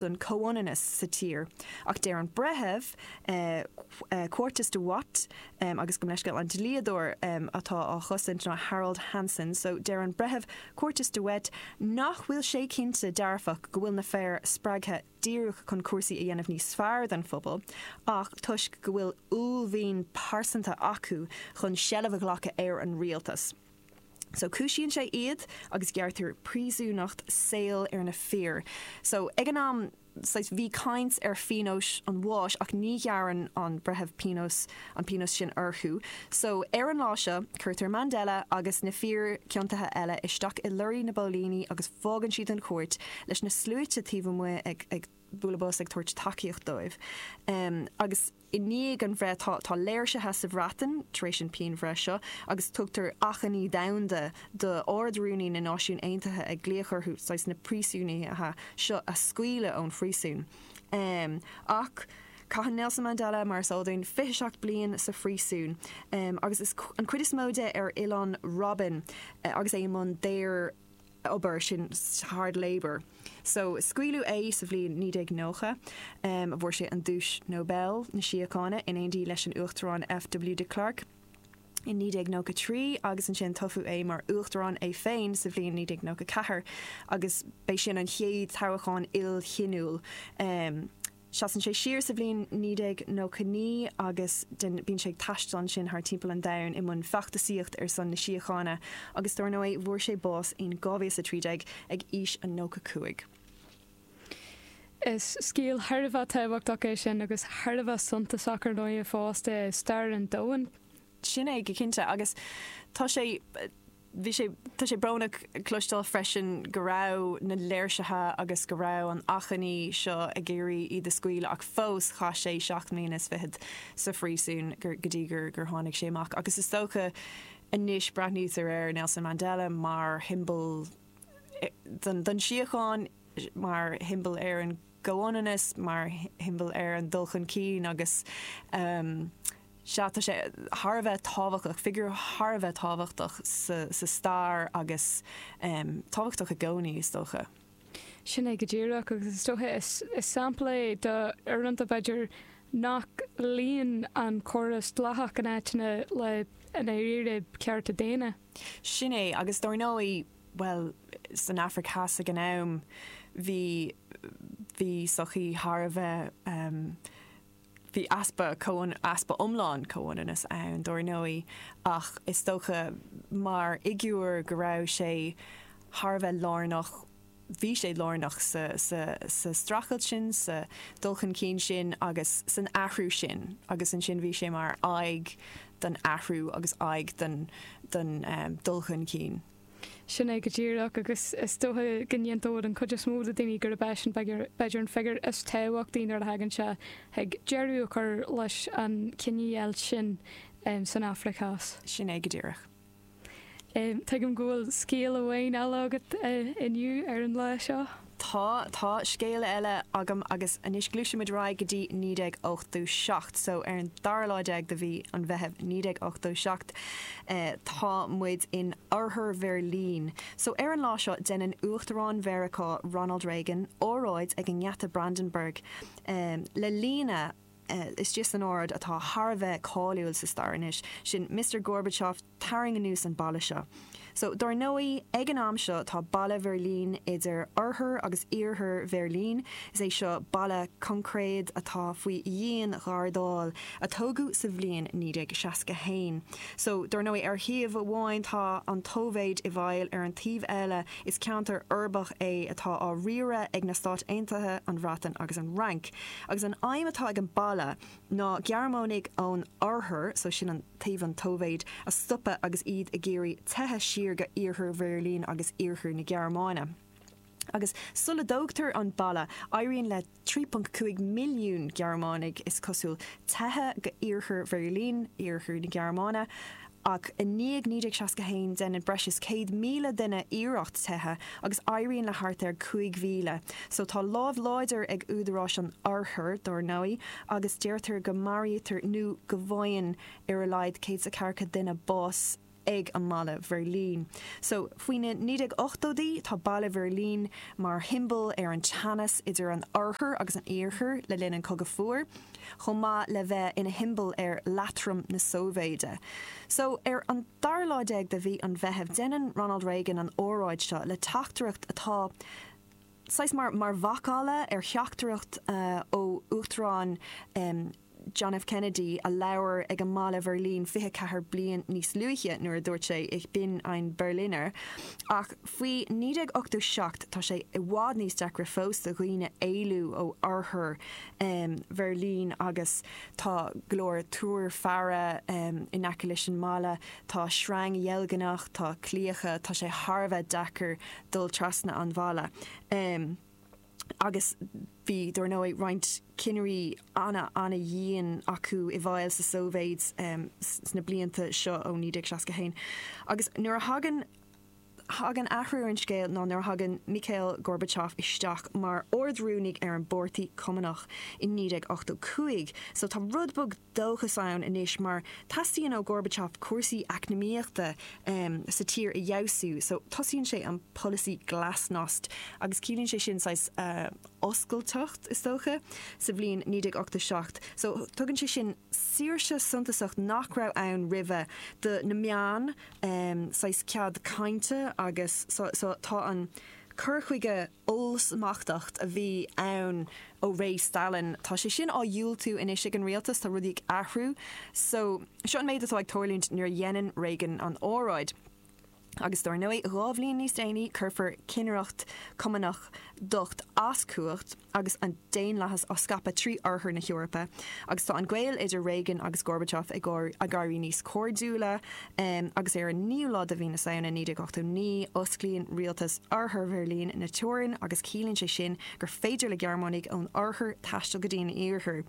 don chomhionannas sa tír, ach deir an Breitheamh Quartus de Wet, agus gabh mo leithscéal an dlíodóir atá á chosaint ná Harold Hanson, so deir an Breitheamh Quartus de Wet nach bhfuil sé cinnte dearfach go bhfuil na fir spreagtha díreach chun cúrsaí a dhéanamh níos fearr don phobal ach toisc go bhfuil uaillmhian pearsanta acu chun seilbh a ghlacadh ar an rialtas. So cúisíonn sé iad agus gearrtar príosúnacht saoil ar na fir. So ag an am, saghas, bhí caint ar phionós an bháis ach ní ghearrann an breitheamh pionós, an pionós sin orthu. So ar an lá seo, cuirtear Mandela agus na fir ciontaithe eile isteach i lorraí na bpóilíní agus fágann siad an chúirt leis na sluaite taobh amuigh ag, ag bualadh bos, ag tabhairt tacaíocht dóibh. Agus. I ndiaidh an bhreith, tá léirsithe sa Bhreatain tar éis an phianbhreith seo agus tugtar achainí domhanda do Ard-Rúnaí na Náisiún Aontaithe ag glaoch orthu saghas na príosúnaithe seo a scaoileadh ón phríosún. Ach caitheann Nelson Mandela, mar is eol dúinn, 27 bliain sa phríosún agus an chuid is mó de ar Oileán Robben agus é i mbun daor. obair, sin hard labour. So scaoileadh é sa bhliain 1990. Fuair sé an duais Nobel na Síochána in éindí leis an Uachtarán FW de Klerk in 1993 agus ansin toghadh é mar Uachtarán é féin sa bhliain 1994 agus b'é sin an chéad toghachán ilchiníoch Seasann sé siar sa bhliain 1999 agus bíonn sé ag taisteal ansin thar timpeall an domhain i mbun feachtasaíocht ar son na síochána agus dár ndóigh fuair sé bás in 2013 ag aois a nócha cúig. Is scéal thar a bheith tábhachtach é sin agus thar a bheith suntasach ar ndóigh i fás stair an domhain. Sin é go cinnte agus tá sé. Bhí sé, tá sé brónach cloisteáil freisin go raibh na léirsithe agus go raibh an achainí seo ag iarraidh iad a scaoileadh ach fós chaith sé seacht mbliana is fichead sa phríosún gur, go dtí gur, gur tháinig sé amach agus is dócha anois breathnaítear ar Nelson Mandela mar shiombail don, don síocháin, mar shiombail ar an gcomhionannas, mar shiombail ar an dul chun cinn agus. Sea, tá sé thar a bheith tábhachtach, figiúr thar a bheith tábhachtach sa stair agus tábhachtach i gcónaí, is dócha. Sin é go díreach, agus is dócha is sampla é d'uaireanta, b'fhéidir, nach luíonn an córas dleathach in áiteanna le i ndáiríre cearta daonna. Sin é, agus dár ndóigh, bhuel, san Afraic Theas ag an am, bhí sochaí thar a bheith Bhí easpa comhionannais, easpa iomlán comhionannais ann, dár ndóigh, ach is dócha mar fhigiúr go raibh sé thar a bheith lárnach, bhí sé lárnach sa streachailt sin, sa dul chun cinn sin agus san athrú sin agus ansin bhí sé mar aghaidh don athrú agus aghaidh don dul chun cinn. Sin é go díreach, agus is dócha go n-aontóidh an chuid is mó de dhaoine gurb eisean b'fhéidir an figiúr is tábhachtaí nuair a thagann sé chuig deireadh a chur leis an chinedheighilt sin san Afraic Theas. Sin é go díreach. Tuigim go bhfuil scéal amháin eile agat inniu ar an lá seo. Tá, tá scéal eile agam agus anois gluaisimid ar aghaidh go dtí naoi déag ochtó seacht, so ar an dara lá déag de mhí an Mheithimh naoi déag ochtó seacht eh tá muid in Oirthear Bheirlín, so ar an lá seo déanann Uachtarán Mheiriceá Ronald Reagan óráid ag an nGeata Brandenburg em le líne eh istigh san óráid atá thar a bheith cáiliúil sa stair anois, sin Mister Gorbachev, tarraing anuas an balla seo. So, dár ndóigh, ag an am seo, tá balla Bheirlín idir oirthear agus iarthar Bheirlín, is é seo balla coincréad atá faoi dhian-ghardáil, a tógadh sa bhliain 1961. So, dár ndóigh, ar thaobh amháin tá an tSóivéid i bhfeighil, ar an taobh eile, is ceantar uirbeach é atá á riaradh ag na Stáit Aontaithe, an Bhreatain agus an Fhrainc. Agus an aidhm atá ag an balla ná Gearmánaigh ón oirthear, so sin an. taobh an tSóivéid a stopadh agus iad ag iarraidh teitheadh siar go Iarthar Bheirlín agus Iarthar na Gearmáine. Agus sula dtógtar an balla, éiríonn le 3.5 milliún Gearmánaigh, is cosúil, teitheadh go Iarthar Bheirlín, Iarthar na Gearmáine, ach i ndiaidh 1961 déanann breis is 100,000 duine iarracht teitheadh agus éiríonn le thart ar 5,000. So tá lámh láidir ag údaráis an Oirthear, dár ndóigh, agus deirtear go maraítear nó go bhfaigheann ar a laghad céad 's a ceathracha duine bás ag an mballa Bheirlín. So faoi na 1980idí tá balla Bheirlín mar shiombal ar an teannas idir an Oirthear agus an Iarthar le linn an Cogadh Fuar, chomh maith le bheith ina shiombal ar leatrom na Sóivéide. So ar an. Dara lá déag de mhí an Mheithimh, déanann Ronald Reagan an óráid seo le teachtaireacht atá saghas mar mar mhacalla ar theachtaireacht ó Uachtarán John F. Kennedy a labhair ag an mballa Bheirlín 24 bliain níos luaithe nuair a dúirt sé Ich bin ein Berliner. Ach faoi 1987 tá sé i bhfad níos deacra fós do dhaoine éalú ó oirthear Bheirlín agus Tá go leor túir faire in aice leis an mbaile. Tá sreang dheilgneach, tá claíocha, tá sé thar a bheith deacair dul trasna an bhalla. Agus bhí, dár ndóigh, roinnt cinnirí ana-ana-dhian acu i bhfeighil sa Sóibhéid sna blianta seo ó 1961. Agus nuair a thagann thagann athrú ar an scéal ná nuair a thagann Mikhail Gorbachev isteach mar Ard-Rúnaí ar an bPáirtí Cumannach i 1985. So tá rud beag dóchais ann anois mar teastaíonn ó Gorbachev cúrsaí eacnamaíochta sa tír a fheabhsú so tosaíonn sé an polasaí glasnost agus ciallaíonn sé sin saghas oscailteacht is dócha sa bhliain 1987. So tugann sé sin. saoirse suntasach nach raibh ann roimhe do na meáin, saghas cead cainte agus so, tá an cur chuige ollsmachtach a bhí ann ó ré Stalin, tá sé sin á dhiúltú anois ag an rialtas, tá rudaí ag athrú, so seo an méid atá ag tarlúint nuair a dhéanann Reagan an óráid. Agus dár ndóigh, dhá bhliain níos déanaí, cuirfear cinnireacht Chumannach docht as cumhacht agus an daonlathas á scaipeadh trí Oirthear na hEorpa. Agus tá an gaol idir Reagan agus Gorbachev ag éirí níos cairdiúla, agus ar an naoú lá de Mhí na Samhna 1989, osclaíonn rialtas Oirthear Bheirlín na teorainn agus ciallaíonn sé sin gur féidir le Gearmánaigh ón Oirthear taisteal go dtí an Iarthar.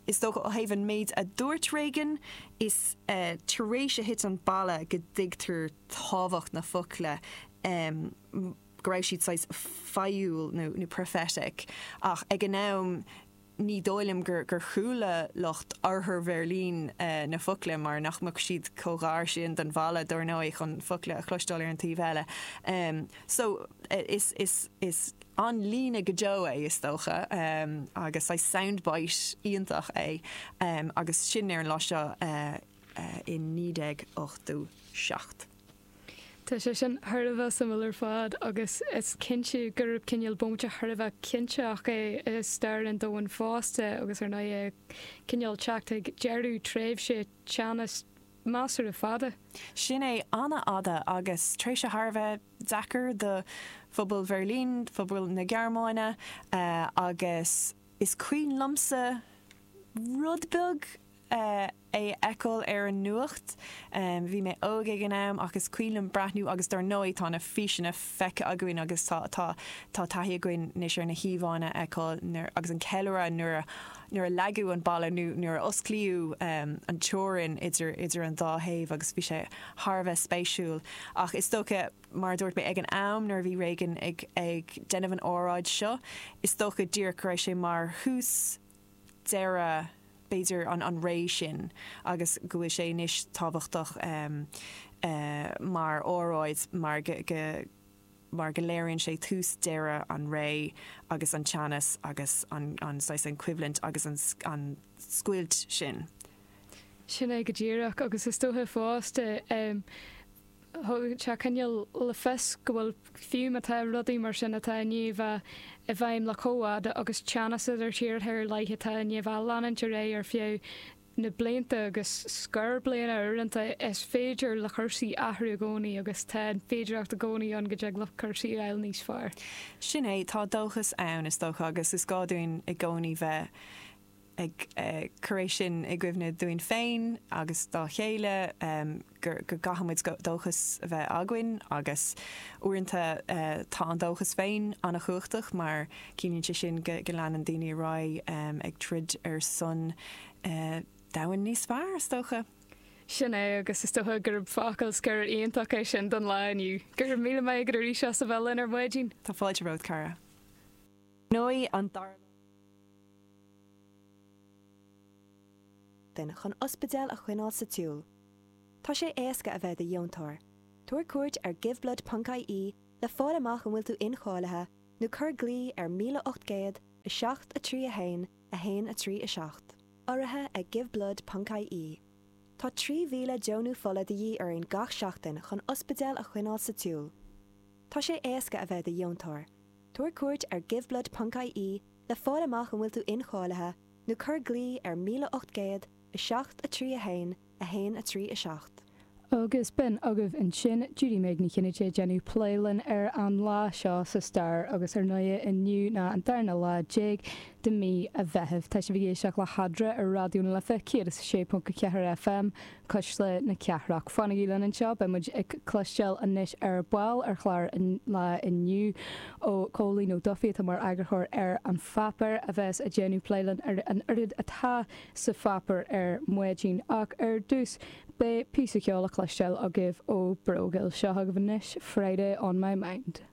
Is dócha, ó thaobh an méid a dúirt Reagan, is tar éis a thit an balla go dtuigtear tábhacht na focla, go raibh siad saghas fáidhiúil nó prophetic, ach ag an am ní dóigh liom gur chuala lucht Oirthear Bheirlín na focla mar nach mbeadh siad chomh gar sin don bhalla, dár ndóigh, chun focla a chloisteáil ar an taobh eile. So, is. an líne go deo é is dócha agus saghas sound bite iontach é agus sin ar an lá seo i 1987. Tá sé sin thar a bheith suimiúil ar fad agus is cinnte gurb cineál bómaite thar a bheith cinniúnach é i stair an domhain fosta agus ar ndóigh é cineál teacht ag deireadh tréimhse teannas measartha fada. Sin é, an-fhada agus tréimhse thar a bheith deacair do phobal Bheirlín, phobal na Gearmáine agus is cuimhin liomsa rud beag é a fheiceáil ar an nuacht, bhí mé óg ag an am ach is cuimhin liom breathnú agus dár ndóigh tá na físeanna feicthe againn agus tá tá tá taithí againn anois ar na híomhánna a fheiceáil agus an ceiliúradh nuair a nuair a leagadh an balla nó nuair a osclaíodh an teorainn idir an dá thaobh agus bhí sé thar a bheith spéisiúil. Ach is dócha, mar a dúirt mé ag an am nuair a bhí Reagan ag déanamh an óráid seo, is dócha díreach go raibh sé mar thús deireadh b'fhéidir an ré sin agus go bhfuil sé anois tábhachtach mar óráid mar go mar go léiríonn sé tús deireadh an ré agus an teannas agus an saghas an choimhlint agus an scoilt sin. Sin é go díreach agus is dócha fosta thug sé cineál le fios go bhfuil fiú má tá rudaí mar sin atá i ndiaidh a bheith i bhfeidhm le comh fada agus teannas idir tíortha ar leith atá i ndiaidh a bheith ag leanúint ar aghaidh ar feadh na blianta agus scór bliana uaireanta is féidir le cúrsaí athrú i gcónaí agus tá an féidireacht i gcónaí ann go dtig le cúrsaí a fháil níos fearr. Sin é, tá dóchas ann, is dócha, agus is gá dúinn i gcónaí bheith ag cur é sin i gcuimhne dúinn féin agus dá chéile. go gcaithfidh muid dóchas a bheith againn agus uaireanta tá an dóchas féin an-chumhachtach mar ciallaíonn sé sin go leanann daoine ar aghaidh ag troid ar son domhain níos fearr, is dócha. Sin é agus is dócha gurb focal scoir iontach é sin don lá inniu. Go raibh míle maith agat arís as a bheith linn ar maidin. Tá fáilte romhat. duine chun ospidéal a choinneáil sa tsiúl. Tá sé éasca a bheith do dheontóir. Tabhair cuairt ar giveblood ponc IE le fáil amach an bhfuil tú incháilithe nó cuir glao ar 1800 7 3 1 1 3 7. Urraithe ag giveblood ponc IE, tá 3,000 deonú fola de dhíth orainn gach seachtain chun ospidéal a choinneáil sa tsiúl. Tá sé éasca a bheith do dheontóir. Tabhair cuairt ar giveblood ponc IE le fáil amach an bhfuil tú incháilithe nó. nó cuir glao ar 1800 7 3 1 1 3 7. Agus b'in agaibh ansin Judy-Meg Ní Chinnéide ag déanamh plé linn ar an lá seo sa stair agus ar ndóigh inniu ná an darna lá déag de mí an Mheithimh. Tá sibh ag éisteacht le hEadra ar Raidió na Life 106.4 FM Cuisle na Cathrach. Fanaigí linn anseo, beidh muid ag cloisteáil anois ar ball ar chlár an lae inniu ó Chóilín Ó Dufaigh atá mar eagarthóir ar An Pháipéar a bheas ag déanamh plé linn ar an oiread atá sa pháipéar ar maidin ach ar dtús beidh píosa ceoil le cloisteáil agaibh ó Brógeal. Seo chugaibh anois Friday On My Mind.